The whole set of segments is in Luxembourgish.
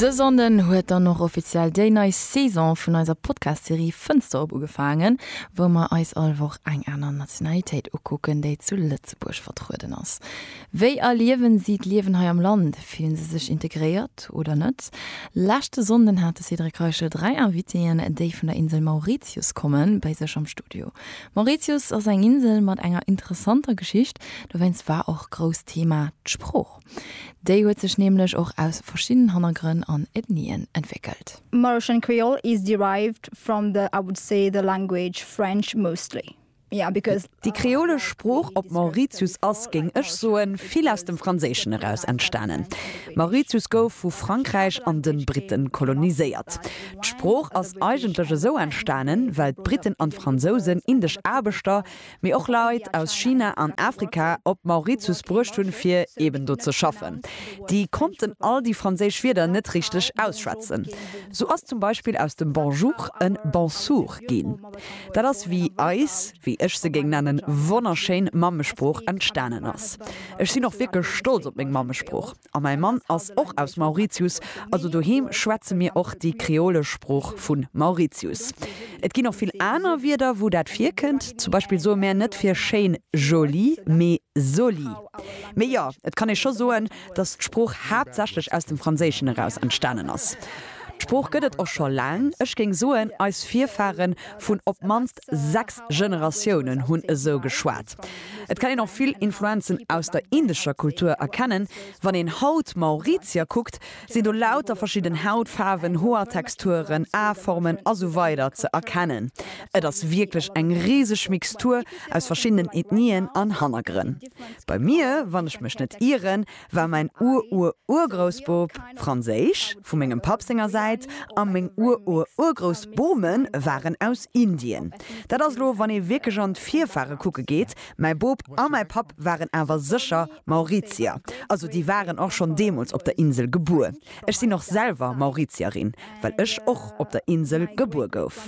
Dës Sonden huet dann och offiziell déi nei Saison vun eiser Podcast-Serie Fënster op ugefaangen, wou mer eis all Woch eng aner Nationalitéit ukucken, déi zu Lëtzebuerg vertrueden ass. Wéi erliewen si d'Liewen hei am Land? Fillen se sech integréiert oder net? Leschte Sonnden hat de Cédric Reichel dräi Invitéen, déi vun der Insel Mauritius kommen, bei sech am Studio. Mauritius ass eng Insel mat enger interessanter Geschicht, dowéinst war och grousst Thema d'Sprooch. Déi huet sech nämlech och aus verschiddenen Hannergrënn an Ethnien entwéckelt. Marocain Creole is derived from the, I would say, the language French mostly, yeah, because. Déi kreolesch Sprooch op Mauritius ass, géing ech soen, vill aus dem Franséischen eraus entstanen. Mauritius gouf vu Frankräich an den Britten koloniséiert. D'Sprooch ass eigentlech esou entstanen, well d'Britten an d'Fransousen indesch Aarbechter, mee och Leit aus China an Afrika op Mauritius bruecht hunn, fir eben do ze schaffen. Déi konnten all déi franséisch Wierder net richteg ausschwätzen. Sou ass zum Beispill aus dem Bonjour en Bonsour ginn. Dat ass wéi eis, wéi ech se géing nennen, wonnerschéin Mammesprooch entstanen ass. Ech sinn och wierklech stolz op meng Mammesprooch. A mäi Mann ass och aus Mauritius, also doheem schwätze mir och déi kreolesch Sprooch vu Mauritius. Et ginn och vill aner Wierder, wou dat virkënnt. Zum Beispill soe mär net fir schéin joli, mee zoli. Mee jo, et kann ee scho soen, datt d'Sprooch haaptsächlech aus dem Franséischen eraus entstanen ass. D'Sprooch gëtt et och scho laang, ech géing soen, eis Virfare vun op d'mannst sechs Generatiounen hunn esou geschwat. Et kann een och vill Influenzen aus der indescher Kultur erkennen. Wann een haut Mauritier kuckt, sinn do lauter verschidden Hautfaarwen, Hoertexturen, Aformen a sou weider ze erkennen. Et ass wierklech eng riseg Mixtur aus verschiddenen Ethnien an Hannergrënn. Bei mir, wann ech mech net ieren, war mäin Ur-Ur-Urgroussbop franséisch, vu mengem Papp senger Säit, a meng Ur-Ur-Urgroussbome waren aus Indien. Dat ass elo, wann ee wierklech an d'Virfahre kucke geet. Mäi Bop a mäi Papp waren awer sécher Mauritier. Also déi waren och schonn deemools op der Insel gebuer. Ech sinn och selwer Mauritierin, well ech och op der Insel gebuer gouf.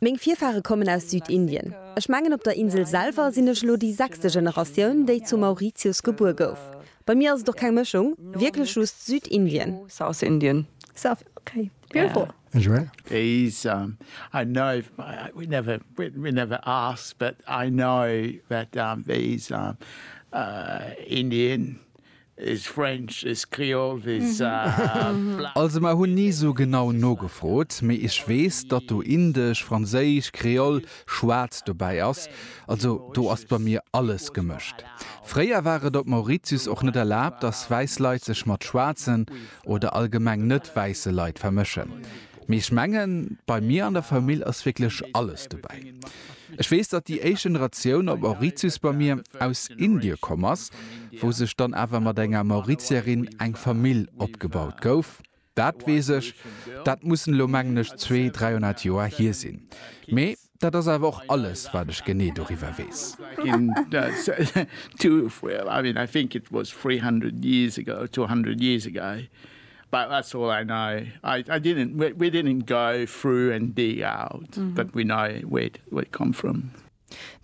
Meng Virfahre kommen aus Südindien. Ech mengen op der Insel selwer sinn ech elo déi sechste Generatioun, déi zu Mauritius gebuer gouf. Bei mir ass et och keng Mëschung, wierklech just Südindien. Is French, is Creole, is bla. Also mer hunn ni sou genau nogefrot, mee ech weess datt do Indesch, Franséisch, Kreoll, Schwaarz dobäi ass. Also do ass bei mir alles gemëscht. Fréier war et op Mauritius och net erlaabt, datt wäiss Leit sech mat schwaarzen oder allgemeng net wäisse Leit vermëschen. Mee ech mengen, bei mir an der Famill ass wierklech alles dobäi. Ech weess, datt déi éischt Generatioun op Mauritius bei mir aus Indie komm ass, wou sech dann awer mat enger Mauritierin eng Famill opgebaut gouf. Dat weess ech. Dat mussen elo, mengen ech, zwee, dräihonnert Joer hier sinn. Mee dat ass awer och alles, wat ech genee doriwwer weess. But that's all I know. I I didn't we we didn't go through and dig out that we know where it where it come from.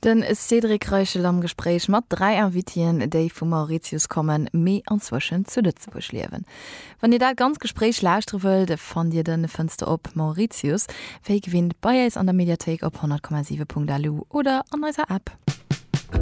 De Cédric Reichel am Gespréich mat dräi Invitien, déi vu Mauritius kommen, mee anzwëschent zu Lëtzebuerg liewen. Wann Dir dat ganz Gespréich lauschtere wëllt, fannt Dir den Fënster op Mauritius wéi gewinnt bei äis an der Mediathéik op 100,7.lu oder an eiser App.